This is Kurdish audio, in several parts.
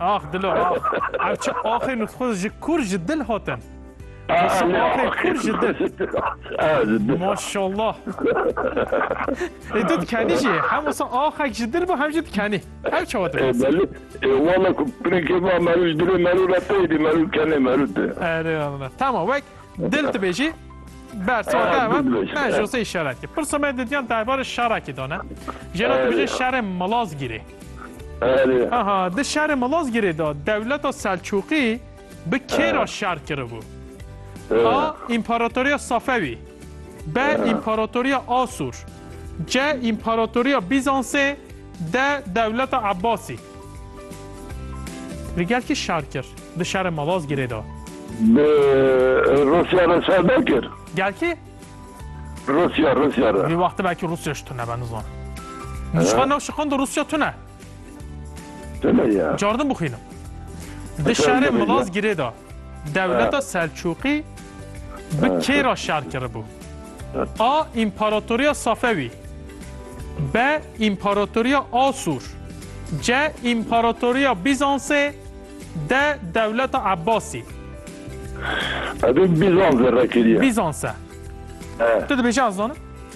Ax dilo ax. Ev çi axê nusxuz ji kur ji dil hatin. Axê kur ji dil. Maşallah. Ê tu dikenî jî hem wisa axek ji dil bû hem jî dikenî. Ev çawa dibas. Belê. Wala ku pirêkê va merû ji dilê merû re teyê dî merû kenê merû te. Erê Allah. Tamam wek Dil dibêjî bersiva te ew e me ji sey şerekî. Pirsa me didiyan derbarê şerekî de ne. Jêra dibêje şerê Malazgîrê. Aha di şerê Malazgîrê de dewleta Selçûqî bi kê re şer kiribû? A. Împaratoriya Safewî B. Împaratoriya Asûr C. Împaratoriya Bîzansê D. Dewleta Ebbasî Li gel kî şer kir? Di şerê Malazgîrê de. Bi Rûsya re şer nekir. Gel kî? Rûsya, Rûsya re. Vî wextê belkî Rûsya ji tune be nizanim. Ji xwe new şiqand Rûsya tune. Tune ya. Cardin bixwînim. Di şerê Malazgîrê de. Dewleta Selçûqî bi kê re şer kiribû? A. Împaratoriya Safewî B. Împaratoriya Asûr C. Împaratoriya Bîzansê D. Dewleta Ebbasî Ez ê Bîzansê re kirî. Bîzans e. Tu dibêjî ez zanim.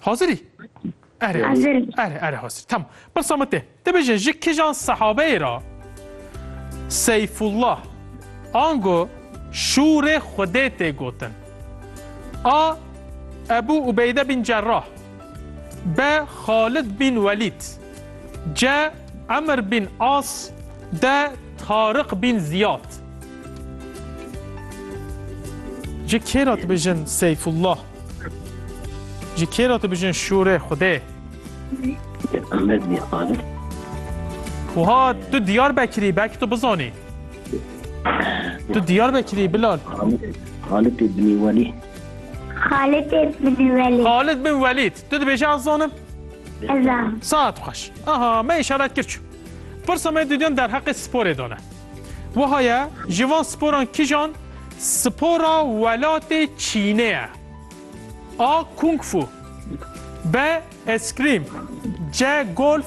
Hazirî? Erê. Hazirî. Erê, erê hazirî. Tamam. Pirsa min tê. Te bêje ji kijan sehabeyê ra Seyfullah ango şûrê Xwedê tê gotin? A. Ebû Ubeyde bin Cerrah B. Xalid bin Welîd C. Emr bin As D. Tariq bin Ziyad Ji kê re dibêjin Seyfullah Ji kê re dibijin şûrê Xwedê? Ahmet Mîr Qadir. Wiha tu Diyarbekirî belkî tu bizanî. Tu Diyarbekirî Bilal. Xalid bin Welî. Xalid bin Welî. Xalid bin Welîd. Tu dibêjî ez zanim? Ez zanim. Saet xweş. Aha me îşaret kir çû. Pirsa me dîdiyan derheqê sporê dane. Wiha ye, ji van sporan kijan spora welatê Çînê ye? A. Kung Fu B. Eskrîm C. Golf